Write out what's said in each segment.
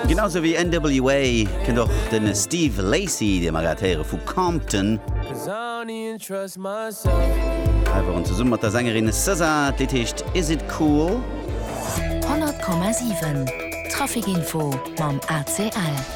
Genau sou wéi NWA kënnt och de Steve Lacy, dee mer grad héiere vu Compton, hei waren zesumme mat der Sängerin SZA. D'Lidd heescht Is It Cool. 100,7 Trafic Info mam ACL.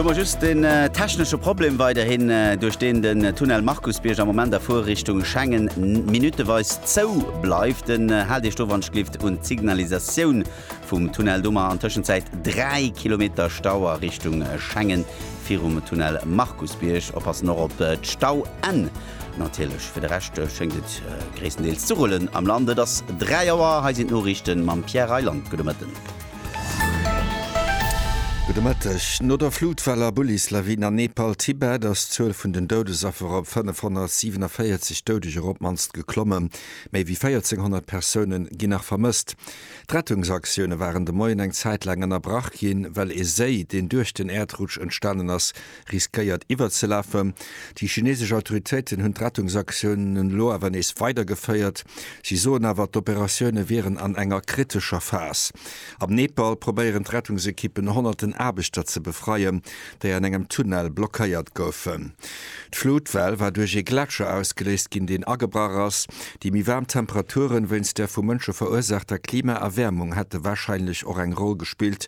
Hu mer just en technesche Problem weiderhin, duerch deen den Tunnel Markusbierg am Moment a Fuerrichtung Schengen minuteweis zou bleift. Haalt Iech do wannschlift un d'Signalisatioun vum Tunnel do. Mer an Tëschenzäit 3 Kilometer Stau a Richtung Schengen virum Tunnel Markusbierg. Oppassen och op d'Stauenn natierlech. Fir de Rescht schéngt et gréisstendeels ze rullen am Land. Et ass 3 Auer, hei sinn d'Noriichte mam Pierre Reyland. Gudde Mëtten. Gudde Mëtteg. No der Flutwell a Bullislawin an Nepal, Tibet ass d'Zuel vun den Doudesaffer op 547 Doudeger op d'mannst geklomme. Méi wéi 1400 Persoune ginn nach vermësst. D'Rettungsaktioune waren de Moien eng Zäit laang ënnerbrach ginn, well ee Séi, deen duerch den Äerdrutsch entstanen ass, riskéiert iwwerzelafen. Déi chinesesch Autoritéiten hunn d'Rettungsaktioun elo awer nees weidergeféiert. Si soen awer, d'Operatioune wieren an enger kritescher Phas. Am Nepal probéieren d'Rettungsekippen honnerten Aarbechter ze befreien, déi an engem Tunnel blockéiert goufen. D'Flutwell war duerch ee Gletscher ausgeléist ginn, deen agebrach ass. Déi méi waarm Temperaturen, wéinst der vu Mënsche verursaachter Klimaerwäermung, hätte warscheinlech och eng Roll gespillt.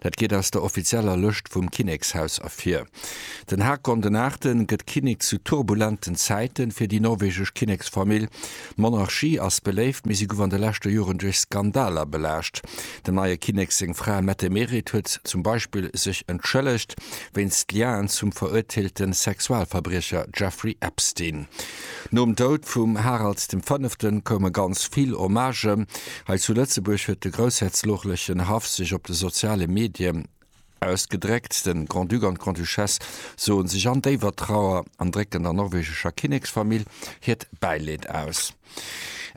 Dat geet aus der offizieller Lëscht vum Kinnekshaus ervir. Den Haakon den Aachten gëtt Kinnek zu turbulenten Zäiten fir déi norwegesch Kinneksfamill. D'Monarchie ass beléift, mee si gouf an de leschte Joren duerch Skandaler belaascht. Dem neie Kinnek seng Fra Mette-Merit huet zum Beispill sech entschëllegt wéinst Liaen zum veruerteelte Sexualverbriecher Jeffrey Epstein. Nom Doud vum Harald dem Fënneften koume ganz vill Hommagen. Hei zu Lëtzebuerg huet de groussherzoglechen Haff sech op de soziale Medie ausgedréckt. De Grand-Duc an d'Grande-Duchesse soe sech an déiwer Trauer an drécken der norwegescher Kinneksfamill hiert Bäileed aus.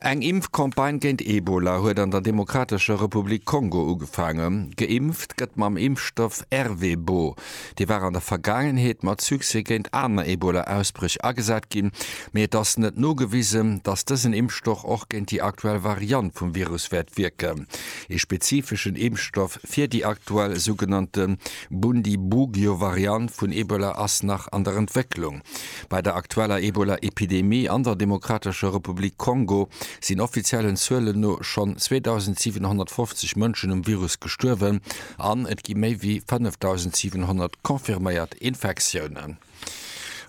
Eng Impfcampagne géint Ebola huet an der Demokratescher Republik Kongo ugefaangen. Geimpft gëtt mam Impfstoff Ervebo. Dee war an der Vergaangenheet mat Succès géint aner Ebola-Ausbréch agesat ginn, mee et ass net nogewisen, datt dësen Impfstoch och géint déi aktuell Variant vum Virus wäert wierken. Ee spezifeschen Impfstoff fir déi aktuell sougenannte Bundibugyo-Variant vun Ebola ass nach an der Entwécklung. Bei der aktueller Ebola-Epidemie an der Demokratescher Republik Kongo sinn offiziellen Zuelen no schonn 2.750 Mënschen um Virus gestuerwen, An et gi méi wéi 5.700 confirméiert Infektiounen.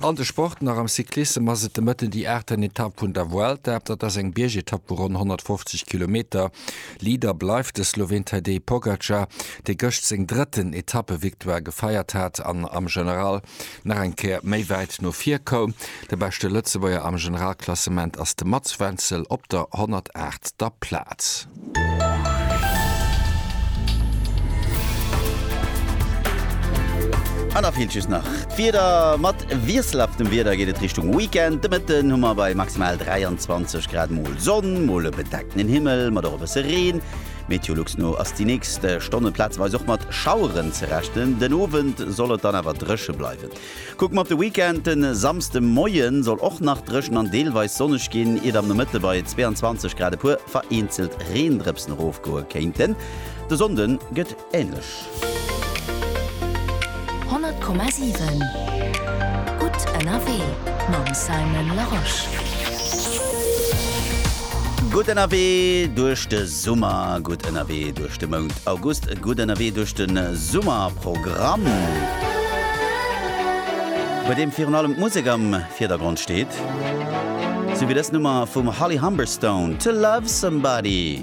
An de Sport nach, Am Cyclissem ass et de Mëtten déi aachten Etapp vun der Vuelta. Dat ass eng Biergetapp vu ronn 150 Kilometer. Leader bleift de Sloween Tadej Pogacar, dee gëscht seng drëtten Etappevictoire gefeiert hat an am General nach eng Kéier méi wäit no vir koum. De beschte Lëtzebuerger am Generalklassement ass de Mats Wenzel op der 108. Plaz. An da feelt just nach d'Wieder. Mat wiesselhaftem Wieder geet et Richtung Weekend. De Mëtten hu mer bei maximal 23 Grad mol Sonn, mol e bedeckten Himmel mat och e bësse Reen. Meteolux no ass déi nächst Stonne plazeweis och mat Schaueren ze rechnen. Den Owend soll et dann awer dréche bleiwen. Kucke mer op de Weekend, De Samsde Moie soll och nach dréchen an deelweis sonneg ginn, iert am Nomëtte bei 22 Grad e puer vereenzelt Reendrëpsen erofgoe kéinten. De Sonnde gëtt änlech. 100,7 Gutt ënnerwee mam Simon Larosche. Gutt ënnerwee duerch de. Summer gutt ënnerwee duerch de Mount August Gutt ënnerwee duerch de Summerprogramm, bei deem virun allem d'Musek am Virdergrond steet, sou wéi dës Nummer vum Holly Humberstone, To Love Somebody.